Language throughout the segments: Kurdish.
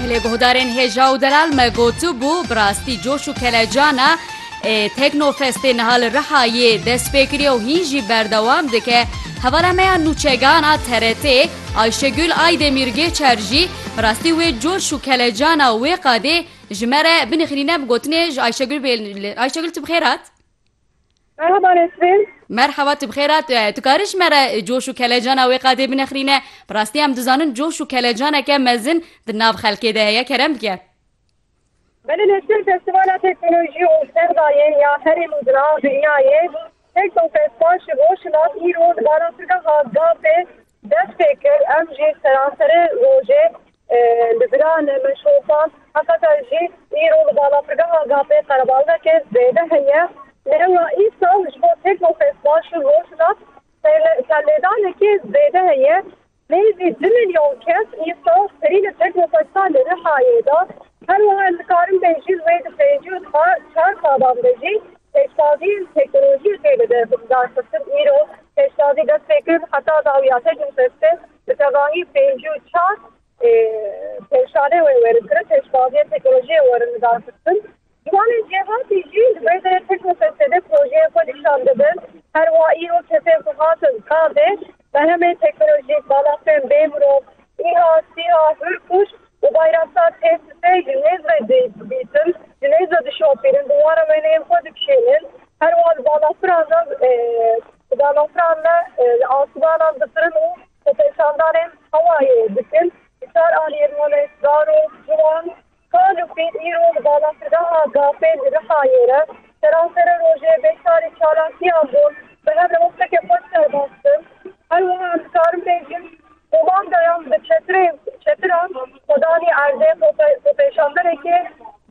Gelê guhdarên hêja û delal me gotibû bi rastî coş û kelecan e. Teknofestê niha li Rihayê dest pê kiriye û hîn jî berdewam dike. Hevala me ya nûçegan a TRT'ê Ayşegül Aydemir Gêçer jî bi rastî wê coş û kelecana wê qadê ji me re binixilîne bi gotinê ji Ayşegül bê Ayşegül tu bi xêr hat? Merhaba Nesrin. Merhaba tu bixêr a tu karî ji me re coş û kelecana wê qadê binexrîne bi rastî em dizanin coş û kelecaneke mezin di nav xelkê de heye kerem bike. Belê Nesrin festîvala teknolojî û sexdayê ya herêm û dina dinyayê Teknofest'dan ji rojhilat îro di barançegeha Gazê dest pê kir em jî seranserê rojê Li Diran meşrosan heqeta jî îro li balafirgeha Gapê Qerebalxekê zêde heye. Lêwa îsal ji bo Teknofest baş û Rojhilat serlêdanekê zêde heye. Nêzî du milyon kes îsal serî li Teknofesta li Rihayê da. Her wiha nikarim bê jî li wê di pêncî û deh çar salan de jî pêştaziyên teknolojiyê tê lidarxistin. Îro pêştazî dest pê kir heta dawîya Teknofestê. Bi tevahî pêncî û çar pêşanê wê werin kirin, pêşbaziyên teknolojiyê werin lidarxistin. Ciwanên cêhatî jî li vê derê teknofestêde projeyên xwe nîşan didin. Her wa îro kesên ku hatin gavê berhemên teknolojîk, balafirên bêmirov, îha, sîha, hurkuş û bayraksar tê sisê ji nêz ve dîtin, ji nêz ve dişopînin, bi wan re wêneyên xwe dikişînin. Her wa li balafiran re. Danûkran me li asmanan difirin û xwepêşandanên hewayê dikin. Di çar aliyê Rihemê zarok, ciwan, kal û pirî îro li balafirgeha Gafê li Rihayê re seransere rojê bêçarî çalakiyan bûn. Me hev li Hoftekê xwe serbaz kir. Her wiha em dikarin bêjin Komandoyan bi çetirê çetiran xwe danî erdê, xwepêşanderekê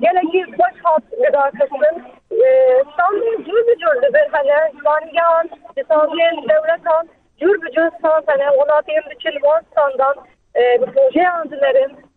gelekî xweş hat lidarxistin. Standên cûr bi cûr li vir hene, zimanîgehan ji standên dewletan cûr bi cûr stand hene, welatiyên diçin wan standan bi projeyan dimerin,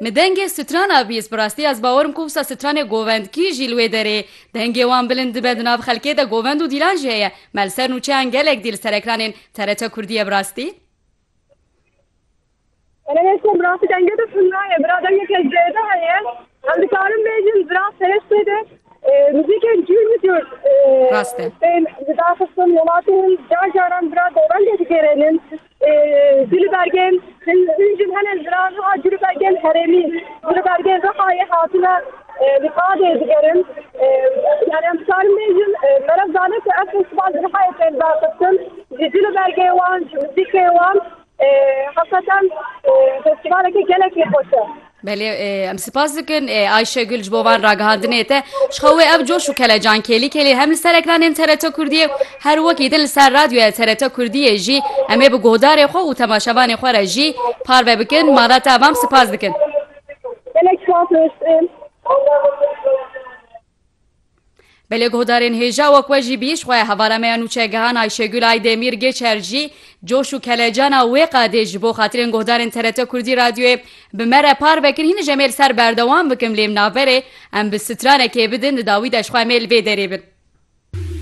Me dengê stran a bîst, bi rastî ez bawer im ku wisa stranê govendkî jî li wê derê dengê wan bilind dibe, di nav xelkê de govend û dîlan jî heye. Me li ser nûçeyan gelek dîl li ser ekranên TRT Kurdiyê bi rastî. Ene ne kom bi rastî denge de tunda ye, bira dengeke zêde heye. Em dikarin bêjin bira serê sê de muzîkên cûr bi cûr tên lidarxistin, welatî min car caran bira govendê digêrênin. Gulbergên hin jin hene jiran wiha gulbergên herêmî gulbergên Rihayê hatine li qadê digerin. Yani em dikarin bêjin merev dane ku ev festîval li Rihayê tên vexistin ji gulbergê wan ji muzîkê wan heqeqan festîvaleke gelekî xweş e. Belê em sipas dikin Ayşe Gül ji bo van ragihandinê te ji xwe wê ev coş û kelecan kêlî kêlî hem li ser ekranên TRT Kurdiyê her wekî din li ser radyoya TRT Kurdiyê jî em ê bi guhdarê xwe û temaşevanê xwe re jî parve bikin mala te evam sipas dikin. Gelek spas dikim. Belê guhdarên hêja wek we jî bî, ji xwe hevara me ya nûçegihan Ayşegul Aydemîr Gêçer jî coş û kelecana wê qadê ji bo xatirên guhdarên TRT Kurdî Radyoyê bi me re par vekin hîn ji em ê li ser berdewam bikim lê bi navberê em bi stranekê bidin di dawî de ji xwe em ê li vê derê bin.